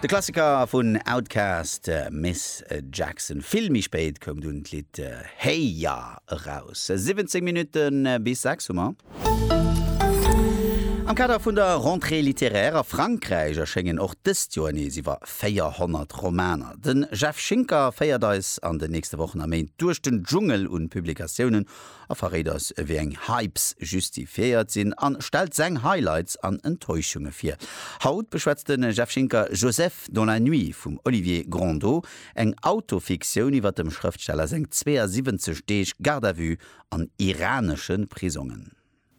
De Klassiker vun Outkast, Miss Jackson. Vill méi spéit koum dunn d'Lidd Hey Ya eraus. 17 Minutte bis 6 hu mer. Am Kader vun der Rentrée littéraire a Frankräich erschéngen och dëst Joer nees iwwer 400 Romaner. De Jeff Schinker féiert eis an den nächste Wochen a Méint duerch den Dschungel un Publikatiounen, A verréit eis ewéi eng Hypes justifiéiert sinn an stellt seng Highlights an Enttäuschunge vir. Haut beschwätzt de Jeff Schinker Joseph dans la nuit vum Olivier Grondeau, eng Autofiktioun iwwer dem Schrëftsteller seng 72 Deeg Garde à vue an iranesche Prisongen.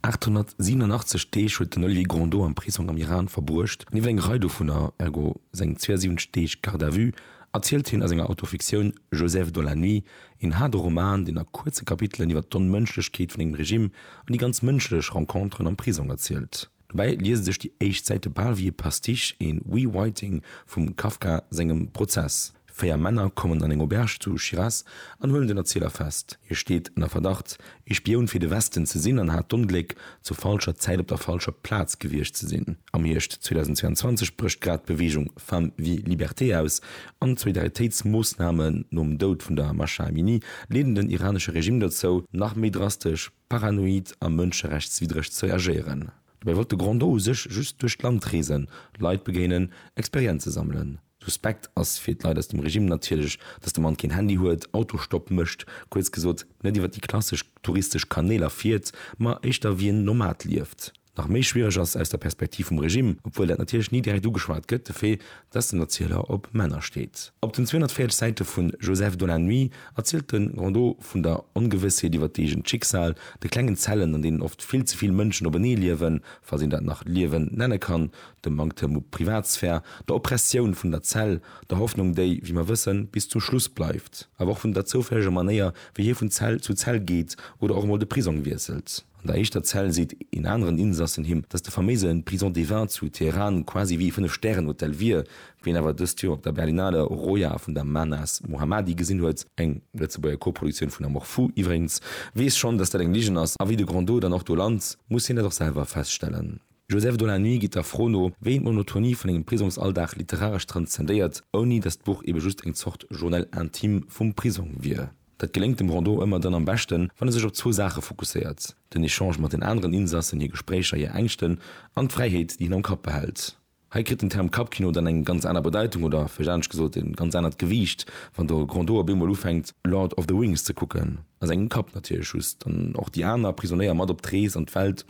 887 Deeg huet den Olivier Grandot am Prisong am Iran verbruecht. Nieft enger Rei dovunner, ergo seng 72 Deeg Garde à vue, erzielt hien a senger Autofiktioun Joseph dans la nuit, een haarde Roman, deen a kuerze Kapitelen iwwer d'Onmënschlechkeet vun engem Regime an déi ganz mënschlech Renconteren am Prisong erzielt. Dobäi liese sech déi éischt Säite bal wéi e Pastiche, een Rewriting vum Kafka sengem Prozess. Véier Männer kommen an eng Auberge zu Shiraz an huelen den Erzieler fest. Hie steet ënner Verdacht, ee Spioun fir de Westen ze sinn an hat d'Ongléck, zur falscher Zäit op der falscher Plaz gewiescht ze sinn. Am Hierscht 2022 brécht grad d'Beweegung Femmes, Vie, Liberté aus an d'Solidaritéitsmoossnamen nom Doud vun der Mahsa Amini leeden den iranesche Regime dozou, nach méi drastesch, paranoid a mënscherechtswiddreg ze reagéieren. Dobäi wollt de Grand Do u sech just duerch d'Land reesen, Leit begéinen, Experienze sammelen. Suspekt ass fir d'Leit aus dem Regime natierlech, dass de Mann keen Handy huet, Autostopp mécht, kuerz gesot, net iwwer déi klassesch touristesch Kanéler fiert, ma éischter wéi en Nomad lieft. Nach méi schwiereg ass aus der Perspektiv vum Regime, obwuel dat natierlech ni direkt ugeschwat gëtt, de Fait, dass den Erzieler op Männer steet. Op den 240 Säite vu Joseph dans la nuit erzielt de Rondeau vun der Ongewëssheet iwwer d'eegent Schicksal, de klengen Zellen, an deenen oft vill ze vill Mënschen openee liewen, falls een dat nach Liewen nenne kann, dem Manktem u Privatsphär, der Oppressioun vun der Zell, der Hoffnung déi, wéi mer wëssen, bis zum Schluss bleift, awer och vun der zoufälleger Manéier wéi hie vun Zell zu Zell geet oder och emol de Prisong wiesselt. An der éischter Zell seet een aneren Insassen him, datt de faméise Prison des Vins zu Teheran quasi wéi ee fënnef Stären Hotel wier. Wien awer dëst Joer op der Berlinale Roja vun der Mahnaz Mohammadi gesinn huet, eng Lëtzebuerger Koproduktioun vun Amour Fou iwwregens, weess schonn, datt dat eng Ligen ass, a wéi de Grandot dann och do lant, muss hien dat och selwer feststellen. Joseph de la Nuit geet der Fro no, wéi een d'Monotonie vun engem Prisongsalldag literaresch transzendéiert, ouni datt d'Buch ebe just eng Zort Journal intime vum Prisong wier. Dat geléngt dem Rondeau ëmmer dann am beschten, wann e sech op zwou Saache fokusséiert, den Echange mat den aneren Insassen, hir Gespréicher, hir Ängschten an d'Fräiheet, déi hien am Kapp behält. Hei kritt den Term Kappkino dann eng ganz aner Bedeitung oder, vläicht anescht gesot, e ganz anert Gewiicht, wann de Rondeau op eemol ufänkt, Lord of the Rings ze kucken, a sengem Kapp natierlech just, an och déi aner Prisonéier mat op d'Rees an d'Welt,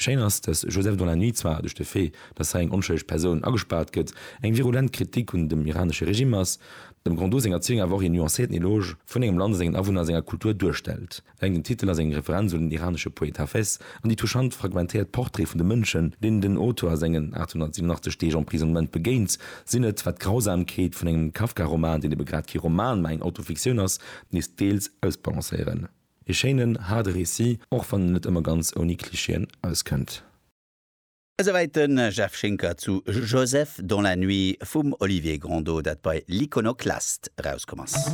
Schéin ass, dass Joseph dans la nuit zwar duerch de Fait, dass hei eng onschëlleg Persoun agespaart gëtt, eng virulent Kritik un dem iranesche Regime ass, dem Grondot senger Erzieung awer och een nuancéierten Eloge vun engem Land a sengen Awunner a senger Kultur duerstellt. Eleng den Titel ass eng Referenz un den iranesche Poet Hafez an déi touchant fragmentéiert Portraite vun de Mënschen, deenen den Auteur a sengen 887 Deeg Emprisonnement begéint, sinn et, wat d'Grausamkeet vun engem Kafka-Roman, deen ebe grad kee Roman, mä eng Autofiktioun ass, nees deels ausbalancéieren. Ee schéinen, haarde Récit, och wann en net ëmmer ganz ouni Klischeeën auskënnt. Esouwäit de Jeff Schinker zu Joseph dans la nuit vum Olivier Grandeau, dat bei L'Iconoclaste erauskomm ass.